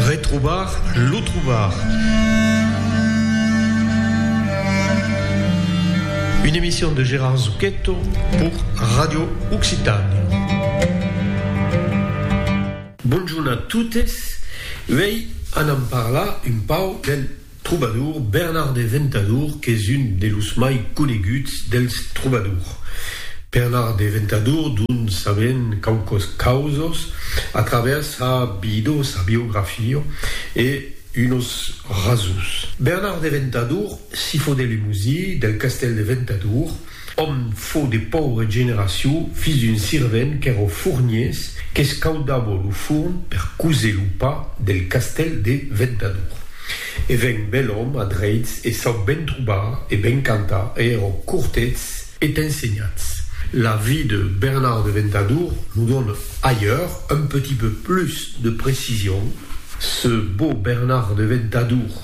Retrobar lo trobar. Une emission de Gérard Zucchetto pour Radio Occitània. Bonjorn a totes, uèi anam parlar un pauc del. Trobador, Bernard de Ventador qu'es un de los mai coneguts dels trobadors. Bernard de Ventador dont sabèm quauquas causas a travèrs sa vida, sa biografia e unos rasons. Bernard de Ventador, sifo de Lemosier, del castèl de Ventador, Òm fò de paure generacion, fils d'un sirvent qu'èro fourniers, qu'escaudavo lo forn per coser lo pa del castèl de Ventadour. E ven bèl òm a dreits e sau ben trobar e ben cantar e èro cortets e t'ensenhats. La vie de Bernard de Ventadour nous donne ailleurs un petit peu plus de précision. Ce beau Bernard de Ventadour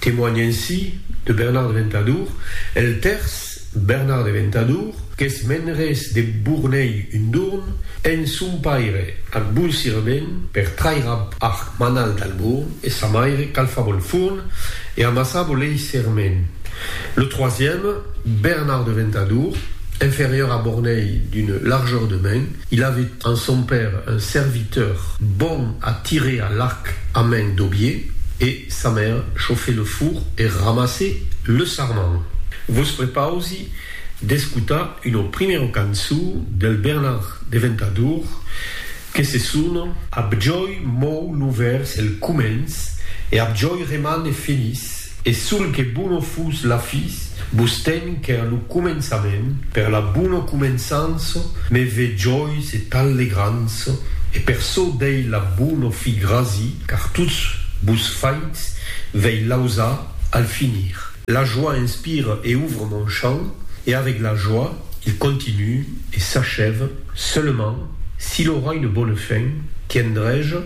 Temoigne ainsi de Bernard de Ventadour el tèrç Bernard de Ventadour, qu'es menres de Bournei un dorn, en son paire ac Bonsirament per trair ab arc Manal dal Bourn e sa maire calfab ol forn e amassab ol ei serment. Le troisième, Bernard de Ventadour, inférieur à Bornei d'une largeur de main, il avait en son père un serviteur bon à tirer à l'arc à main d'aubier, e. Sa maire chauffe le four e ramasse le sarment. Vos prepausi d'escotar una primèra cançó del Bernard de Ventadour que se sona. Abjòi mou lo vèrs el comènç e abjòi remane feliç e sol que bona fus la fis Bustem qu'èr lo començament, per la bono començanço, me ve jois et allegrantço, e per çò dei la bono fi grasi, car tots bus faits vei lausa al finir. La joie inspire et ouvre mon champ, et avec la joie il continue et s'achève, seulement, s'il aura une bonne fin, tiendrai-je,